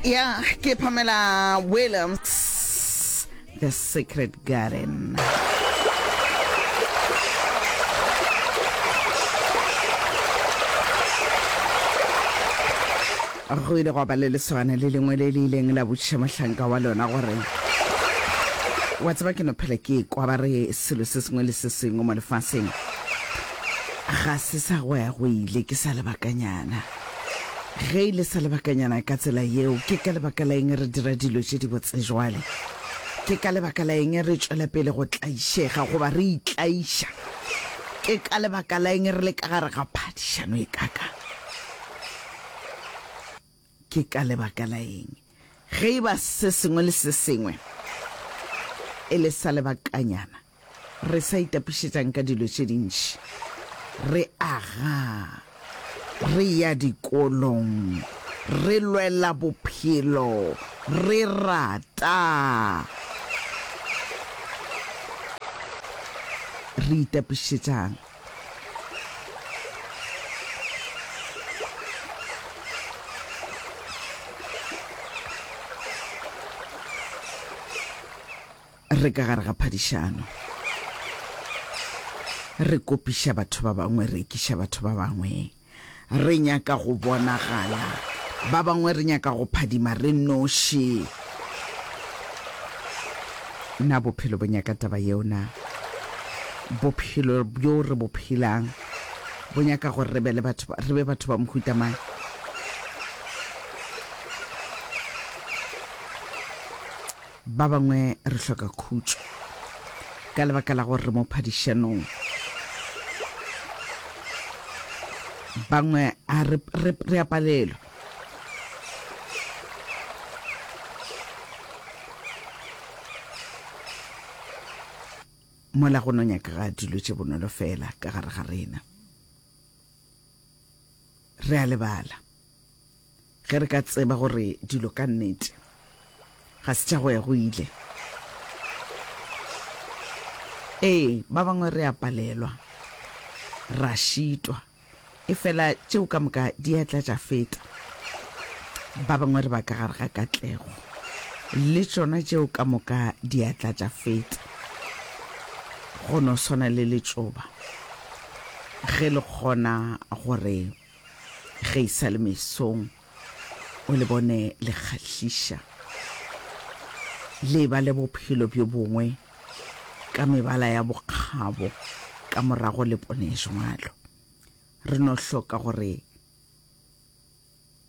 ya ke pamela williams the secret garden go ile go ba le lesogana le lengwe le le ileng la botšiša mohlanka wa lona gore wa tseba ke no phela ke kwa ba re selo se sengwe le se sengwe mo lefaseng ga se sa go ya go ile ke sa lebakanyana Ge e le sa lebakanyana ka tsela yeo, ke ka lebaka la eng re dira dilo tše dibotse bjale? Ke ka lebaka la eng re tšwela pele go tlaišega goba re itlaiša? Ke ka lebaka la eng re le ka gare ga phadišano e kakang? Ke ka lebaka la eng ge e ba se sengwe le se sengwe e le sa lebakanyana Re sa itapišetšang ka dilo tše dintši, re aga, re ya dikolong, re lwela bophelo, re rata, re itapišetšang? Re ka gare ga phadišano, re kopiša batho ba bangwe, re ekiša batho ba bangwe, re nyaka go bonagala, ba bangwe re nyaka go phadima re noši. Na bophelo bo nyaka taba yeo? Na bophelo bjo re bo phelang bo nyaka gore re be le batho, re be batho ba mohuta mang? Ba bangwe re hloka khutšo ka lebaka la gore re mo phadišanong. Bangwe a re, re, re a palelwa. Mola go no nyaka ga dilo tše bonolo fela ka gare ga rena. Re a lebala. Ge re ka tseba gore dilo ka nnete ga se tša go ya go ile, ee, ba bangwe re a palelwa, ra šitwa, efela tšeo ka moka di a tla tša feta. Ba bangwe re ba ka gare ga katlego, le tšona tšeo ka moka di a tla tša feta. Go no swana le letšoba, ge le kgona gore Ge e sa le mesong, o le bone le kgahliša, le eba le bophelo bjo bongwe ka mebala ya bokgabo ka morago le pone jwalo. Re no hloka gore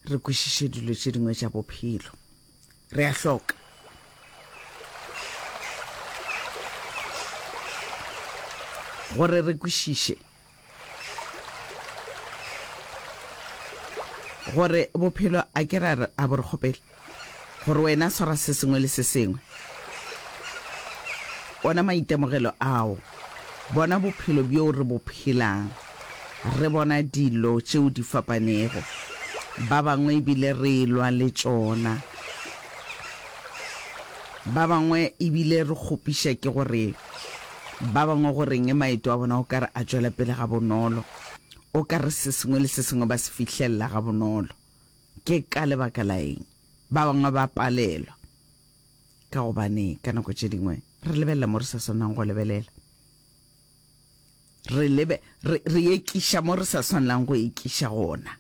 re kwešiše dilo tše dingwe tša bophelo. Re a hloka. Gore re kwešiše. Gore bophelo a ke ra re a bo re kgopele gore wena swara se sengwe le se sengwe. Ona maitemogelo ao, bona bophelo bjo re bo phelang, re bona dilo tšeo di fapanego, ba bangwe ebile re elwa le tšona, ba bangwe ebile re kgopiša ke gore. Ba bangwe go reng maeto a bona o ka re a tšwela pele gabonolo? O ka re se sengwe le se sengwe ba se fihlelela gabonolo. Ke ka lebaka la eng ba bangwe ba palelwa? Ka gobane ka nako tše dingwe re lebelela mo re sa swanang go lebelela. Re, lebe, re, re ekiša mo re sa swanelang go ekiša gona.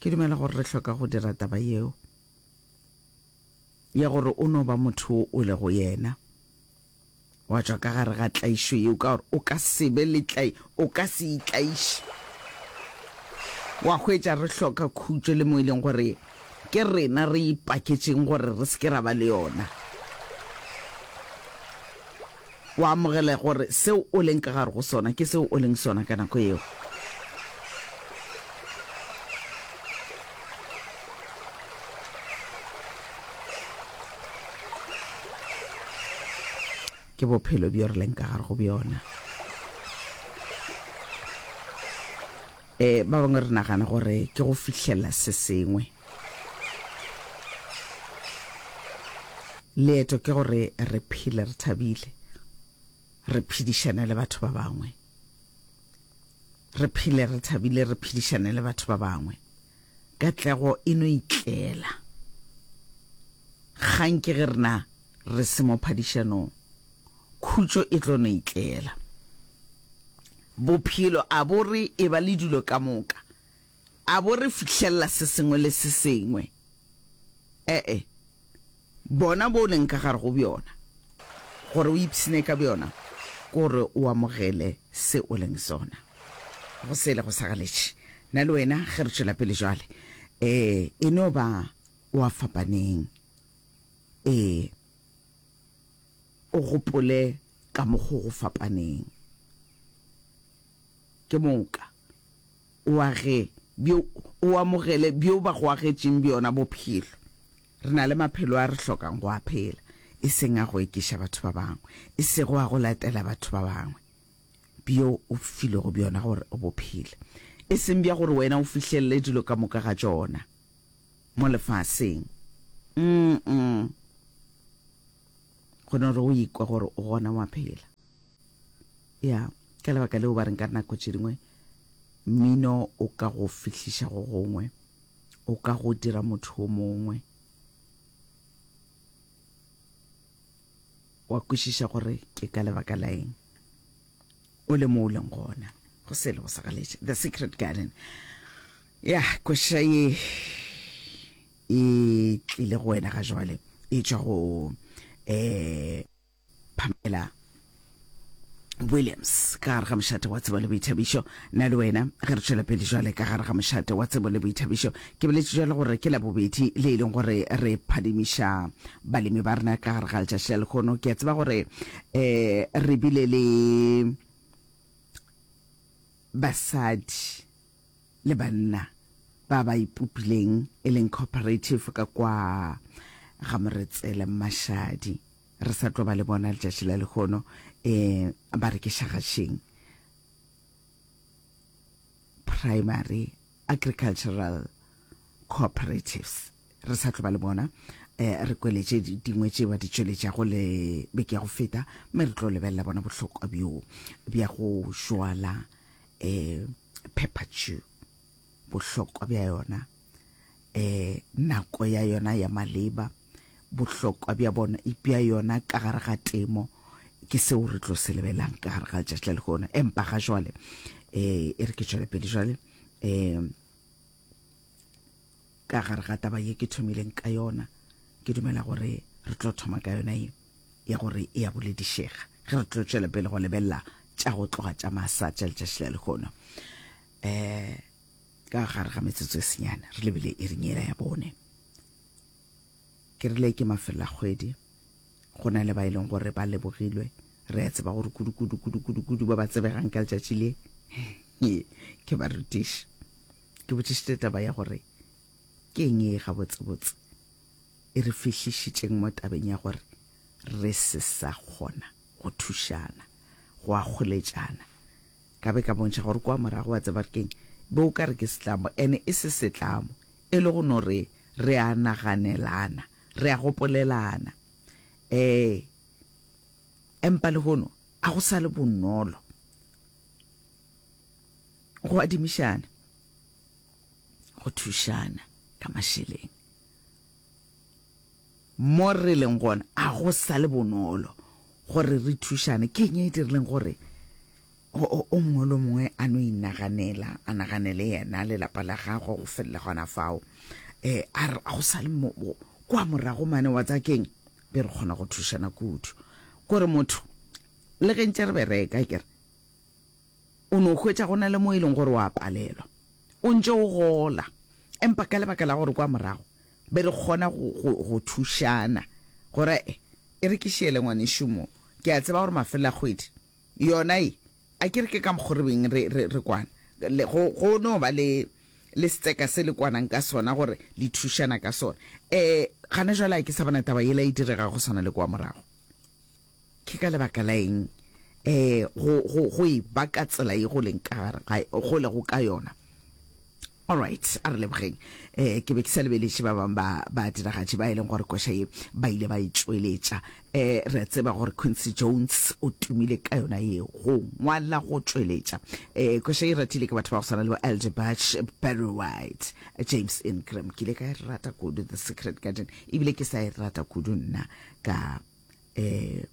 Ke dumela gore re hloka go dira taba yeo. ya gore o no ba motho wo o lego yena, wa tšwa ka gare ga tlaišo yeo, ka gore o ka se be le tlai, o ka se itlaiše. Wa hwetša re hloka khutšo le mo e leng gore ke rena re ipaketšeng gore re se ke ra ba le yona. O amogele gore seo o leng ka gare go sona ke seo o leng sona ka nako yeo. ke bophelo bjo re leng ka gare go bjona um ba bangwe re nagana gore ke go fihlelela se sengwe Leeto ke gore re phele re thabile, re phedišane le batho ba bangwe. Re phele re thabile, re phedišane le batho ba bangwe. Katlego e no itlela. Kgang ke ge rena re se mo phadišanong, khutšo e tlo no itlela. Bophelo a bo re e ba le dilo ka moka, A bo re fihlelela se sengwe le se sengwe? E-e. Bona bo o leng ka gare go bjona. Gore o ipshine ka bjona, ke gore o amogele se o leng sona. Go sele go sa galetše. Nna le wena ge re tšwela pele jwale, ee, e no ba o a fapaneng. Ee, o gopole ka mokgo go fapaneng. Ke moka. O age bjo o amogele bjo ba go agetšeng bjona bophelo. Re na le maphelo a re hlokang go a phela, e seng a go ekiša batho ba bangwe, e sego a go latela batho ba bangwe, bjo o filwego bjona gore o bo phele, e seng bja gore wena o fihlelele dilo ka moka ga tšona mo lefaseng. Umm. gona gore o ikwa gore o gona wa phela ya ka lebaka leo ba reng ka nako tše dingwe mmino o ka go fihliša go gongwe o ka go dira motho o mongwe wa kwešiša gore ke ka lebaka la eng o le mo o leng gona go sele go sa galetše the secret garden ya kwešiša ye e tlile go wena ga jwale e tšwa go eh Pamela Williams ka gare ga mošate wa tsebo le boithabišo na le wena ge re tšwela pele jwale ka gare ga mošate wa tsebo le boithabišo ke boletše jwale gore ke labobedi le e leng gore re phadimiša balemi ba rena ka gare ga letšatši la lekgono ke a tseba gore um re bile le basadi le banna ba ba ipopileng e leng cooperative ka kwa ga Moretsele Mmashadi re sa tlo ba le bona letšatši la lehono um ba re ke šagašeng primary agricultural cooperatives re sa tlo ba le bona um re kweletše dingwe tše ba di tšweletšago le beke ya go feta mme re tlo lebelela bona bohlokwa bjo bja go šwala um pepper chew bohlokwa bja yona eh nako ya yona ya maleba bohlokwa bja bona bja yona ka gare ga temo ke seo re tlo se lebelang ka gare ga letšatši la lekgono empa ga jwale eh e re ke tšwele pele jwale eh ka gare ga taba ye ke thomileng ka yona ke dumela gore re tlo thoma ka yona ye ya gore e ya boledišega ge re tlo tšwela pele go lebelela tša go tloga tša masa tša letšatši la lekgono um eh, ka gare ga metsotso e senyane re lebile e rinyela ya bone Ke rile ke mafelelakgwedi, go na le ba e leng gore ba lebogilwe. Re a tseba gore kudu-kudu, kudu-kudu, kudu ba ba tsebegang ka letšatši le ke barutiši. Ke botšišitše taba ya gore ke eng e gabotsebotse e re fihlišitšeng mo tabeng ya gore re se sa kgona go thušana, go akgoletšana. Ka be ka bontšha gore kua morago, wa tseba re keng, be o ka re ke setlamo, and e se setlamo, E le go no re, re a naganelana, re a gopolelana. Ee, empa lehono a go sa le bonolo go adimišana, go thušana ka mašeleng. Mo re leng gona a go sa le bonolo gore re thušane. Ke eng e e dirileng gore O mongwe le o mongwe a no inaganela, a naganele yena, lelapa la gagwe, go felela gona fao. A re, go sa le kwa morago mane wa tsa keng, be re kgona go thušana kudu. Kore motho, le ge ntše re bereka, ke re, o no hwetša go na le mo e leng gore wa palelwa, o ntše o gola, empa ka lebaka la gore kwa morago be re kgona go thušana, gore e re ke šele ngwanešu mo, ke a tseba gore mafelelo a kgwedi Yona ye, a ke re ke ka mokgo re beng re, re, re kwana, le, go, go no ba le, le setseka se le kwanang ka sona, gore le thušana ka sona. E, gane jwale a ke sa bona taba yela e direga go swana le kwa morago. Ke ka lebaka la eng e, go, go, go e ba ka tsela ye go leng ka gare ga, go lego ka yona? Alright, a re lebogeng. Eh, ke be ke sa lebeletše ba bang ba ba diragatši ba e leng gore koša ye ba ile ba e tšweletša. Eh, re a tseba gore Quincy Jones o tumile ka yona ye go ngwala go tšweletša. Eh, koša ye ratile ke batho ba go swana le bo Elder Batch, Barry White, James Ingram. Ke ile ka e rata kudu The Secret Garden, ebile ke sa e rata kudu nna ka eh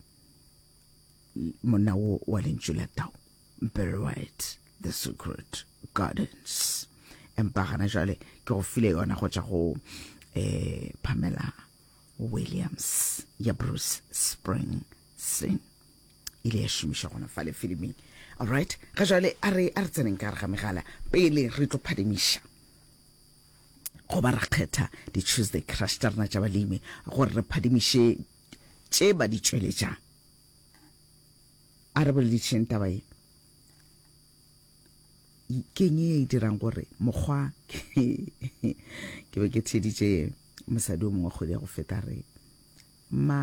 monna wo wa lentšu la tao very right the secret gardens empa gana jale ke go file yona go tša go eh, pamela williams ya bruce spring sing ile ya šomiša gona fa le filiming allright ga jale a re a re tseneng ka gare ga megala pele re tlo phadimiša go ba re kgetha di-tuesday crush tša rena tša balemi gore re phadimiše tše ba di tšweletša. A re boledišeng taba ye. Keng ye e dirang gore mokgwa ke be ke theditše mosadi o mongwe kgwedi ya go feta re ma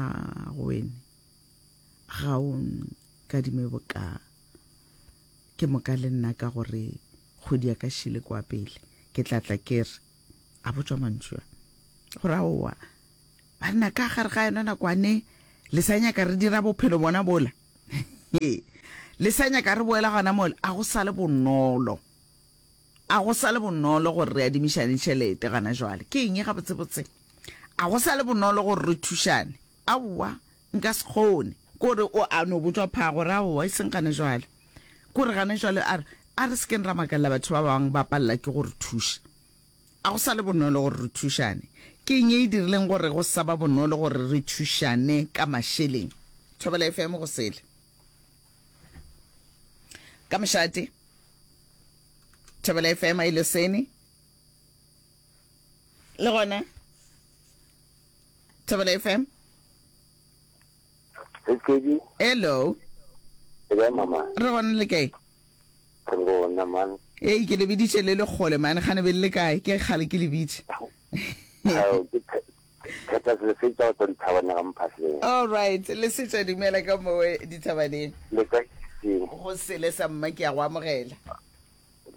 go wene ga o nkadime boka ke moka le nna ka gore kgwedi ya ka šile kwa pele ke tla tla ke re a botšwa mantšu a gore aowa banna ka gare ga yona nakwane le sa nyaka re dira bophelo bona bola le sa nyaka re boela gona mola a go sa le bonolo a go sa le bonolo gore re adimišane tšhelete gana jwale ke eng ga botsebotse a go sa le bonolo gore re thušane Aowa, nka se kgone. Kore o a no botšwa phago, ra aowa, e seng gane jwale. Kore gane jwale, a re, a re se keng ra makalela batho ba bangwe ba palela ke go re thuša. A go sa le bonolo gore re thušane? Ke eng e e dirileng gore go sa ba bonolo gore re thušane ka mašeleng? Thobela FM go sele. Ka mošate, Thobela FM a ile sene le gona. Thobela FM. Tsedi. Hello. Ke ba mama. Re gona le kae? Re gona man. Ee ke lebiditše le le kgole mane gane be le le kae ke kgale ke lebitše. Theta se se tsa go dithabana ga mphatleng. All right, le se tsa dumela ka mowe dithabaneng. Le ka seng. Go sele sa mma ke ya go amogela.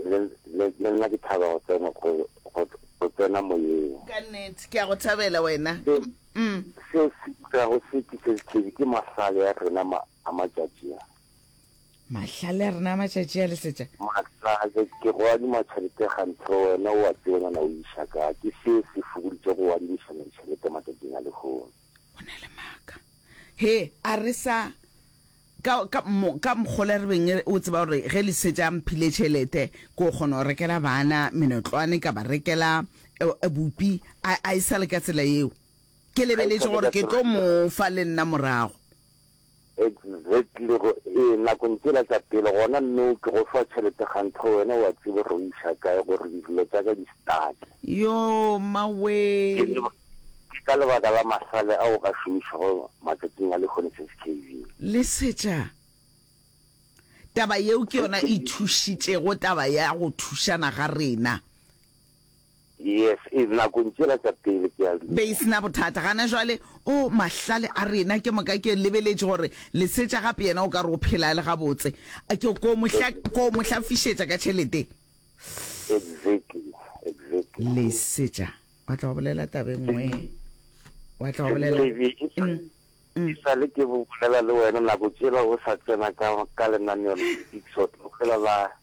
Le, le, le nna ke thaba go tsena, go, go, go tsena Moyeng. Ka nnete, ke a go thabela wena. Se, Ke, mm. se se dirago se ke se sethebi, ke mahlale a rena ma, a matšatši a. Mahlale a rena a matšatši a, Lesetša. Mahlale, ke go adima tšhelete ganthe, wena o a tseba, nana o iša ka, ke se se fokoditše go adimišana ditšhelete matšatšing a lehono. O na le maaka. He, a re sa, ka, ka, mo, ka mokgola re beng o tseba gore ge le setša mphile tšhelete, ko kgona go rekela bana menotlwane, ka ba rekela eh, eh, bupi, a, a e sa le ka tsela yeo. Ke lebeletše gore ke tlo mo fa le nna morago. Exactly go e nakong tsela tsa pele gona nou ke go fa tšhelete kgantho wena wa tsebe ro iša kae gore dilo tsa ka di stuck. Yoo mmawee. Ke ka lebaka la masale a o ka šomišago matsatsing a lehono skv. Lesetša, Taba yeo ke yona e thušitšego taba ya go thušana ga rena. Yes, e, nakong tšela tša pele, ke a dumela. Be e se na bothata. Gana jwale, o, mahlale a rena, ke moka ke lebeletše gore Lesetša gape yena o ka re o phela a le gabotse. A ke ko mo hla, ko mo hlafišetša ka tšhelete. Exactly, exactly. Lesetša, wa tla wa bolela taba e nngwe, wa tla wa bolela. Davey, e sa, e sa le ke bolela le wena, nako tšela o sa tsena ka, ka lenaneo la Big Short, o fela la.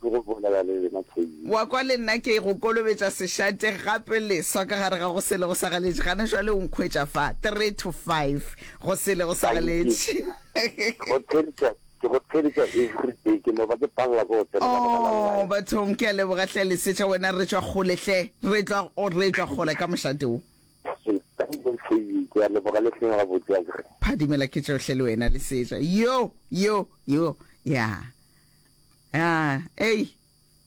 Ke go bolela le lena Thobile. Wa kwa, le nna ke go kolobetša sešate gape leswa ka gare ga go sele go sagaletše. Gane jwale o nkhwetša fa, three to five go sele go sagaletše. Ke go theeletša, ke go theeletša everyday, ke no ba ke palela ke go tsena ka baka la Oh, line. bathong, ke a leboga hle Lesetša, wena re tšwa kgole hle, re tlwa, o, re tlwa kgole ka mošate wo. Thobile, ke a leboga le hleng gabotse akere. Phadimela ke tšohle le wena Lesetša. Yo, yo, yo, ya. A, ei,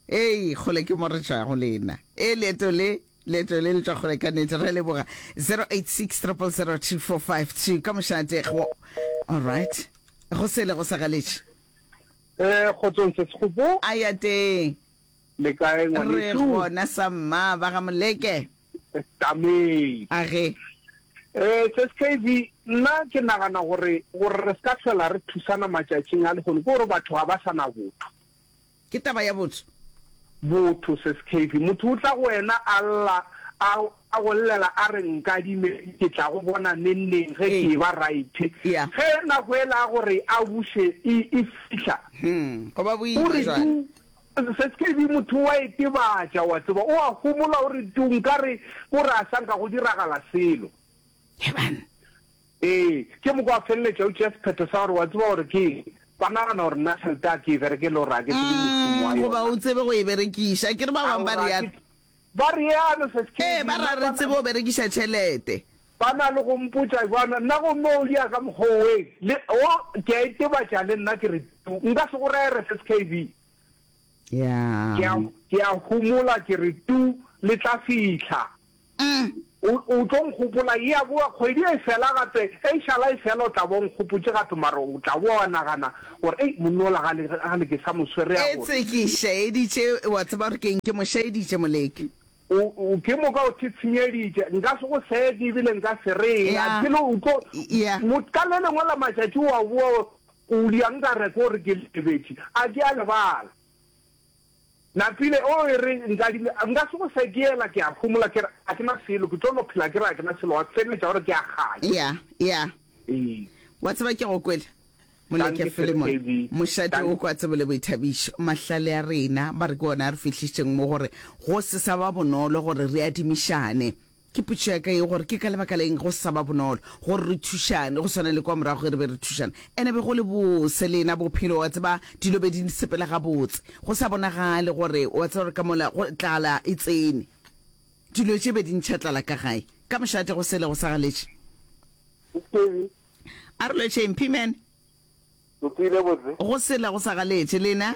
ei, kgole ke mo re tšwago le na. E, leeto le, leeto le le tšwa kgole ka nete. Re leboga. 086 000 2452 ka mošate go. All right. Go sele go sa galetše. Eh, kgotsong se Sekgopo. A ya teng. Le kae ngwanešu? Re gona sa mma ba ga Moleke. Tamei. A ge. Eh, se Skavy, nna ke nagana gore gore re ska tlhola re thusana matšatšing a lehono ke gore batho ga ba sa na botho. Ke taba ya botho. Botho se Skavy. Motho o tla go wena a lla a a go llela a re nkadime ke tla go bona neng neng ge ke eba right. Ya. Ge nako ela ya gore a buše e e fihla. Hm, go ba boima jwale. O re du Skv. Motho o a itebatša, o a tseba, o a homola gore tu nkare ko re a sa nka go diragala selo. Heban. Ee, ke mo kwa feleletša o tšea sephetho sa gore, o a tseba gore ke eng, ba nagana gore nna tšhelete a ke e berekele gore a ke tsebe mošomo wa Umm, goba o yona. tsebe go e berekiša. Akere ba bangwe ba Aora, a ke, reat. Ba realo, Sesi Kedi. Ee, ba ra re tsebe o berekiša tšhelete. Ba na le go mpotša bjana, nna gomme o dia ka mokgwa oweng, le, wo, ke a itebatša le nna, ke re, Tuu, nka se go rere, Sesi Kedi. Ya. Ke a, ke a homola, ke re, Tuu, le tla fihla. O, o tlo nkgopola, eya boa, kgwedi e fela gape, e šala e fela, o tla ba o nkgopotše gape, mara o tla boa wa nagana gore, Ei, monna ola ga le, ga le ke sa mo swere, ya bona. Etse ke šaeditše, wa tseba gore ke'ng, ke mo šaeditše, moleko. O, o, ke moka o thetshwenyeditše, nka se go seke, ebile nka se re eng, Ya, a ke le, o tlo, ya. mo, ka le lengwe la matšatši wa boa, o, o, ya nka re ke gore ke lebetše, a ke a lebala. Napile, O e re Nkadime, nka se go fe, ke yela, ke a phomola, ke re, a ke na selo, ke tlo no phela ke re a ke na selo, wa feleletša o re ke a kgale. Eya, eya. Ee. Wa tseba ke go kwele? Moleke Philemon, mošate o kwa tsebo le boithabišo. Mahlale a rena ba re ke ona a re fihlišitšeng mo gore go se sa ba bonolo gore re adimišane. Ke potšo ya ka yeo gore ke ka lebaka la eng go sa ba bonolo gore re thušane go swana le kwa morago ge re be re thušana. Ene be go le bose le ena bophelo, wa tseba, dilo be di nsepela gabotse, go sa bonagale gore, wa tseba, gore ka mola go, tlala e tsene, dilo tše be di ntšha tlala ka gae, ka mošate go sele go sa galetše. Skebi. A re lwetšeng, P-man. Lokile botse. Go sele go sa galetše, lena?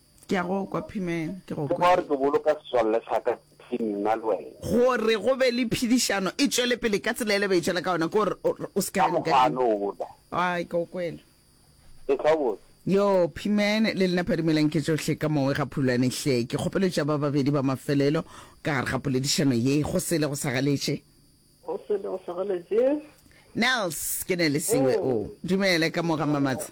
Ke a go kwa, Pimen, ke go Ke kwa. kwa gore ke boloka setswalle sa ka se nna le wena. Gore go be le phedišano e tšwele pele ka tsela yela ba e tšwela ka yona, ke gore o, o se ka Ka ya mokgwa a nokeng. no wola. Ai, ke go kwele. E tla botse. Yoo, Pimen, le lena phadimelang ke tšohle ka Mowe ga phulwane hle. Ke kgopelo tša ba babedi ba mafelelo ka gare ga poledišano ye. Go sele go sa galetše. Go sele go sa galetše. Nels, ke ne le siwe o. Dumele, ka mo ga Mmamatsa.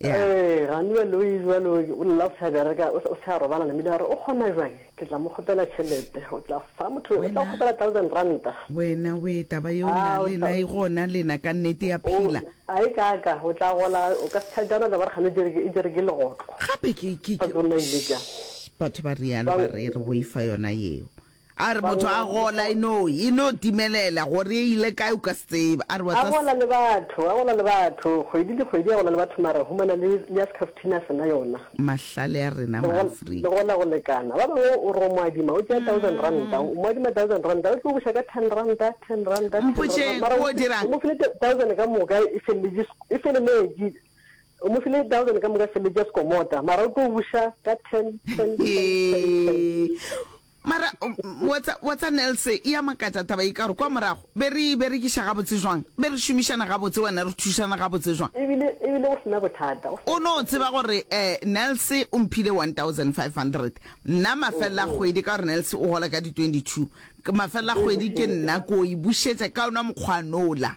Yeah. Ee, Ganue Louis bjalo o lla o sa bereka, o sa- o sa robala le mila, a re o kgona bjang? Ke tla mo kgopela tšhelete, o tla fa motho, o tla Wena- kgopela thousand ranta. wena we taba yeo Ah, na o le tla- na e gona lena ka nnete ya phela O- a e kaaka, o tla gola, o ka se tšhajana, o tla ba re kgane o jere ke- e jere ke legotlo. gape ke ke- Sa ke- tsona ile ka. Shh, batho ba realo ba Ba- re re boifa yona yeo A re motho a gola e no, e no timelela gore e ile kae o ka se tsebe. A re wa A tseba gola se. le batho, a gola le batho, kgwedi le kgwedi a gola le batho mara humana le, le ya Scaftini a se na yona. Mahlale a rena Le gol, Maafrika. le gola go lekana. Ba bangwe o re o mo adima, o tšea thousand ranta, o mo adima thousand ranta, o tlo buša ka ten ranta, ten ranta, ten ranta, Mpotšeng, mara o o dirang? o mo file thousand ka moka e feleletše, e feleletše. O mo file thousand ka moka sebetša sekomota mara o tlo buša ka ten ten mara watsa nelse e ya makatša taba e ka gore kwa morago be re berekiša gabotse jwang be re šomišana gabotse wena re thušana gabotse jwang ebile ebile o sena bothata o no tseba gore um nelse o mphile one thousand five hundred nna mafelela mm-hmm. kgwedi ka gore nelse o gola ka di twenty two mafelela kgwedi ke nna ko e bušetša ka ona mokgwanola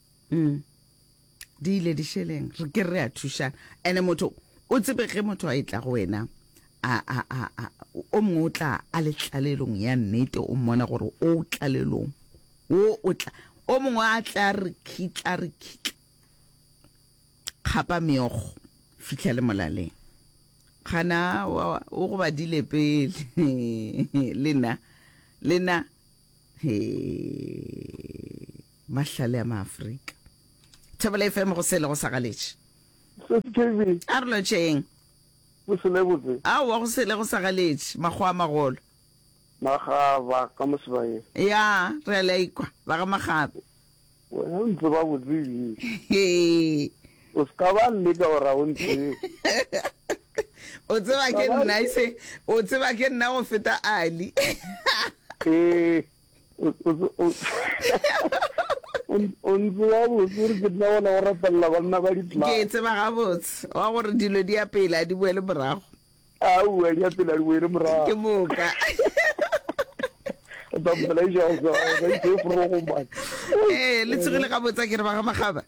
mm. di ile di šeleng re ke re a thušana ene motho o tsebe ge motho a e tla go wena o mongwe o tla a le tlalelong ya nnete o mmona gore o tlalelong o o tla o mongwe a tla re khitla re khitla kgapa meogo fitlha le molaleng gana o go badile pele lena lena he Mahlale a Maafrika. Thobela FM go sele go sa galetše. Sesi KB. A re lotšeng. Go sele botse. Aowa go sele go sa galetše. Makgowa a magolo. Magaba ka Mosebaeng. Ya, re a le a ikwa. Ba ga Magaba. Wena o ntse ba botse ebile. Hee. O se ka ba leka o ra o ntse. O tseba ke nna ise. O tseba ke nna go feta Ali. Hee. o ntse wa botse gore ke nna ola o rapelela banna ba dipla ke tseba gabotse wa gore dilo di ya pele a di boele morago aowa di ya pele a di boele morago ke moka ee le tsegile gabotse a ke re ba ga magaba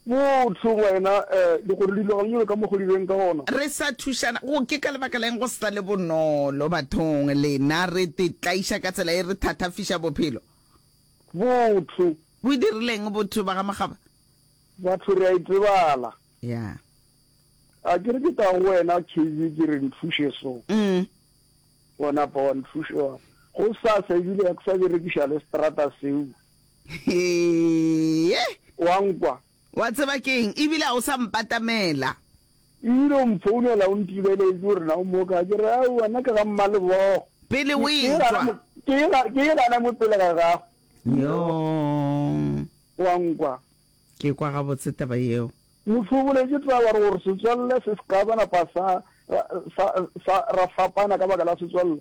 Wo o hlong wena, di gore dilo ga di nyolo ka mo go di beng ka gona. Re sa thušana, go ke ka lebaka la'ng go sa le bonolo bathong lena re te tlaiša ka tsela e re thathafiša bophelo? Botho. Bo e dirileng botho ba ga Makgaba? Batho re a e tsebala. Ya. A ke re ke tla go wena KB ke re nthuše so. Umm. Wa napa wa nthuša wa re, Go sasa ebile ya ke sa berekiša le seterata seo. Hee! Wa nkwa? Wa tseba ke eng? Ebile a o sa mpatamela. O ile o mphounela o ntibeletše gore na o mo kae. Ke re, Aowa, nna ke ga Mmalebogo. Pele o etšwa. Ke e gana mo pele ga gago. Yoo! Wa nkwa? Ke e kwa gabotse taba yeo. Mohlwoboletše taba gore setswalle se se ka ba napa sa ra fapana ka baka la setswalle.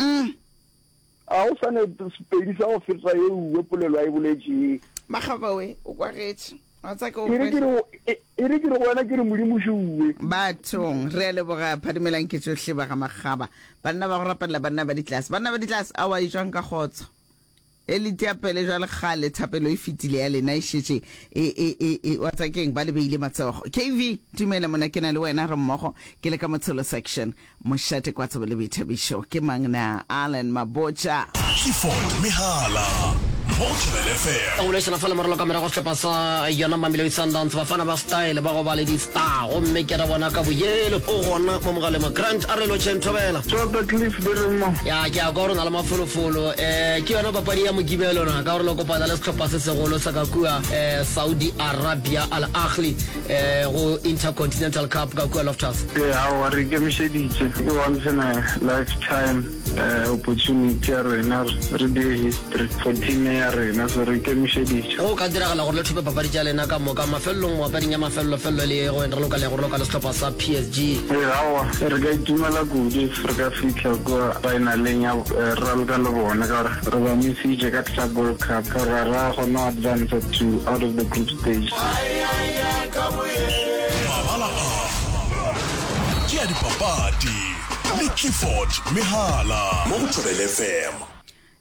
Umm a go sa ne sepedi sa go feta ye uwe polelo a e boletšee. Makgaba we, o kwagetše. Wa tsa ke o Ere ke re go- e- ere ke re go wena ke re Modimo še uwe. Bathong, re a leboga Phadimelang ke tšohle ba ga Makgaba. Banna ba go rapelela banna ba ditlase. Banna ba ditlase, aowa e jwang ka kgotso? Ge le tia pele bjale kgale thapelo e fetile ya lena e šetše e, e, e, e, wa tsa keng ba le beile matsogo. KV, Dumela monna, ke na le wena re mmogo, ke le ka Motshelo section. Mošate Kwatsebo le Boithabišo, ke mang na? Allan Mabotja. Clifford Mehala mo go Thobela FM. Ka go boledišana fa lemorelo ka morago sehlopha sa yona Mamelodi Sundowns, Bafana ba Style ba gobale di-Star gomme ke re bona ka boyelo o gona mo mogaleng wa Grant a re lotšheng Thobela. Tota Cliff, di re mo? Ya, ke a kwa, o re o na le. Mafolofolo um ke yona papadi ya Mokibelo na ka gore le kopana le sehlopha se segolo sa ka kua um Saudi Arabia, Al Ahly um go Intercontinental Cup ka kua Loftus. E, aowa, re ikemišeditše. Ke once in a lifetime um opportunity ya rena gore re dire history for team e ya rena, so re ikemišeditše. Go ka diragala gore le thope papadi tša lena ka moka mafelelong mo papading ya mafelelo-felelo e le ye go ena re loka le go loka le sehlopha sa PSG. E, aowa. Re ka itumela kudu if re ka fihla kua faenaleng ya raloka le bone ka gore re ba misitše ka Club World Cup ka gore ga ra kgona go advanca to out of the group stage. Mabala a ke a dipapadi le Clifford Mehala mo go Thobele FM.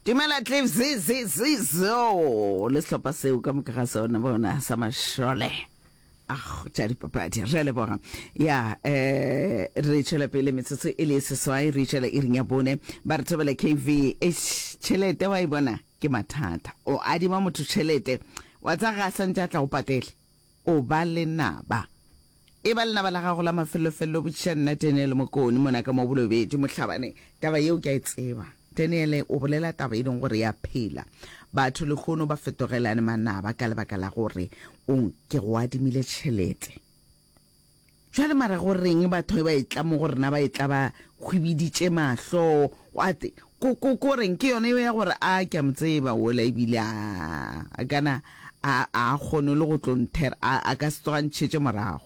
Dumela Cliff zi zi zi zo le sehlopha seo ka moka ga sona bona sa mašole. Ah, tša dipapadi re a leboga ya um re tšwela pele metsotso e le e seswai re tšwela e ring ya bone ba re thabela kv tšhelete wa e bona ke mathata o adima motho tšhelete wa tsa ga a santse a tla go patele o ba le naba e ba lenaba la gago la mafellofello botšiša nna tenele mokone mona ka mo bolobetše mohlabane taba yeo ke a e tseba Daniele o bolela taba e leng gore ya phela. Batho lehono ba fetogelane manaba ka lebaka la gore o nke go adimile tšhelete. Bjale mara go reng batho ba etla mo go rena ba etla ba hwibiditše mahlo? Gwate ko, ko, ko reng? Ke yona eo ya gore a ke a mo tseba wola ebile a, a kana a, a kgone le go tlo nthera, a, a ka se tsoga ntšhetše morago.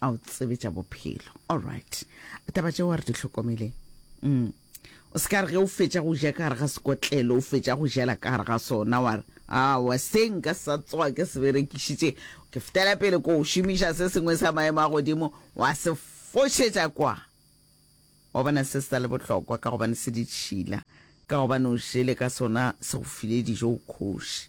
a o tsebe tša bophelo all right taba tšeo a re di tlhokomele mm. o se ka re ge o fetša go ja ka gare ga sekotlelo o fetša go jela ka gare ga sona wa re awa se nka sa tsoa ke se berekišitše ke fetela pele ko o šomiša se sengwe sa maemo a godimo wa se fošetša kwa wa bona se se le bohlokwa ka gobane se ditšhila ka gobane o šele ka sona se go file dijo o kgoši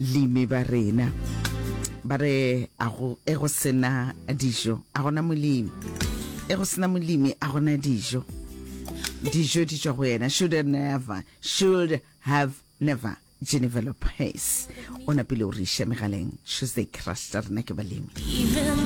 Limi ba rena ba re a go e go sena dijo a gona molimi e go sena molimi a gona dijo dijo di tšwa go yena should have never should have never genevelop pace o napile o re iša megaleng tuesday crush tša rena ke balemi